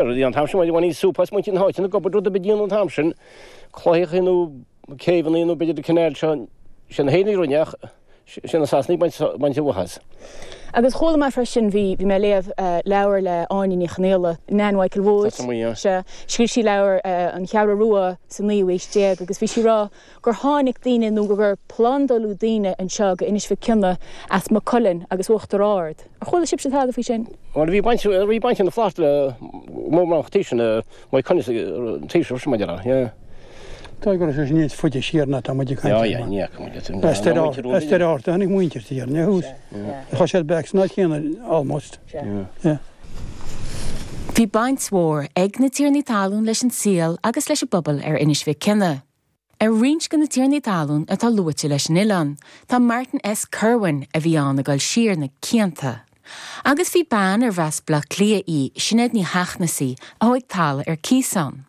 Rudaí an t-am sin, bhain siad sú as muintir na háite, ag obair rud ar bith dian an t-am sin, claíochaí nó céibheannaí nó b'fhéidir an cineál seo, sin iad na hÉireannaigh a rinne ach sin na Sasanaigh ag baint an mhaith as. Agus chuala mé freisin, bhí mé ag léamh leabhair le Áine Ní Chonaola, Nan Mhichael Wood, sea, scríobh sí leabhar, An Cheathrú Rua sa naoú haois déag agus bhí sí ag rá, gur tháinig daoine nó gur plandáladh daoine anseo go Inis Mhic Cionaith as Maigh Cuilinn agus Uachtar Ard. Ar chuala sibhse tada faoi sin? Bhuel, bhí baint ag na Flaitheartaigh le mórbhánach taoisigh na Maigh Cuilinn sa tsaoirseacht sin, mar dhea, yeah. Tá, go raibh sé sin níos faide siar ná atá muid ag caint ar mar, as Doire Fheárta a tháinig muintir de Éirinn, yeah. Tá siad bheith ag san áit chéanna almost, yeah. Bhí baint mhór ag na tiarnaí talún leis an saol agus leis an bpobal ar Inis Mhic Cionaith. Ar roinnt go na tiarnaí talún atá luaite leis an oileán, tá Martin S. Kirwan, a bhí ann ag dul siar na cianta. Agus bhí bean arbh as B'leá Cliath í, Sinéad Ní Sheachnasaí, a thóig talamh ar cíos ann.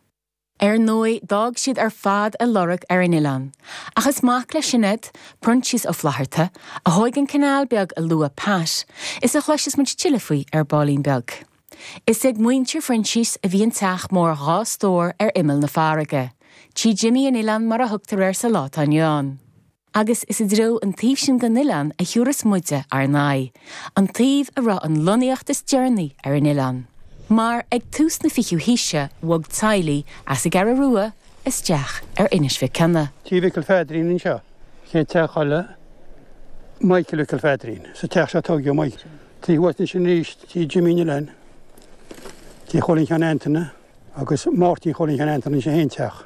Ar ndóigh, d'fhág siad ar fad a lorg ar an oileán, ach is mac le Sinéad, Proinsias Ó Flaithearta, a thóig an canal beag a luaigh Pat, is a chloiseas muid tuilleadh faoi ar baillín beag. Is ag muintir Phroinsias a bhí an teach mór dhá stór ar imeall na farraige, Tí Jimmy an Oileáin mar a thugtar air sa lá atá inniu ann. Agus is i dtreo an taobh sin den oileán a thiúrfas muide ár n-aghaidh, an taobh a raibh an lonnaíocht is deireanaí ar an oileán. Mar, ag tús na fichiú haoise, bhog teaghlaigh as an gCeathrú Rua isteach ar Inis Mhic Cionaith. Tí Mhicil Pheadairín anseo, chéad teach a chodlaigh Michael Mhicil Pheadairín. Sa teach seo a tóigeadh Michael. Taobh thuas de sin arís, tí Jimmy an Oileáin, tí Chóilín Sheáin Antaine agus Máirtín Chóilín Sheáin Antaine, in aon teach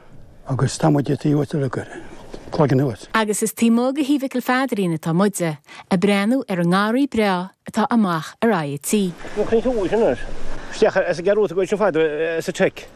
agus tá muide taobh thuas de go Cloigeann thuas. Agus is taobh amuigh de thí Mhicil Pheadairín atá muide, ag breathnú ar an ngarraí breá atá amach ar aghaidh an tí. An Chnoic thuas anois. Isteach is ag gearradh a gcuid sin fada sa tSeic.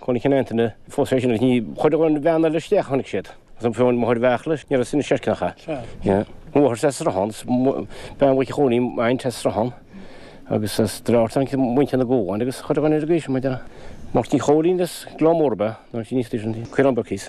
Chóilín Sheáin Antaine. Fós fé sin, ní chuirfeadh an bhean eile isteach a chonaic siad, agus an firín mhóir a bheadh leis, ní raibh sin i seirce nach ea. Mháthair as sruthán, is bean Mhac Chóilín a'inn as sruthán, agus as Droichead Átha a'innt do mhuintir na gCuan, agus chuirfeadh an fhir go haois, maidir le Máirtín Chóilín, is gleann mór ab ea, nó an sin níos d'aois an Ciarán Birkes.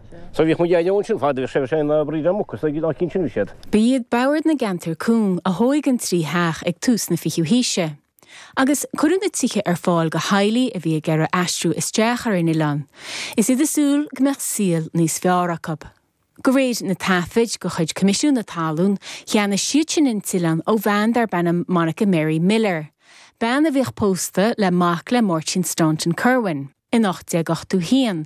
Sea, bhíodh muid airneoin sin fad a bhíodh sé ina oibrí le muca, so ná cinsinim a siad. Ba iad Bord na gCeantar Cúng a thóig an trí theach ag tús na fichiú haoise. Agus cuireadh na tithe ar fáil go theaghlaigh a bhí ag iarraidh aistriú isteach ar an oileán, is iad ag súil go mbeadh saol níos fearr acu. Go réir na taifid de chuid Coimisiún na Talún, cheannaigh siadsan an t-oileán ó bhean darb ainm Monica Mary Miller, bean a bhíodh pósta le mac le Máirtín Staunton Kirwan, in 1881.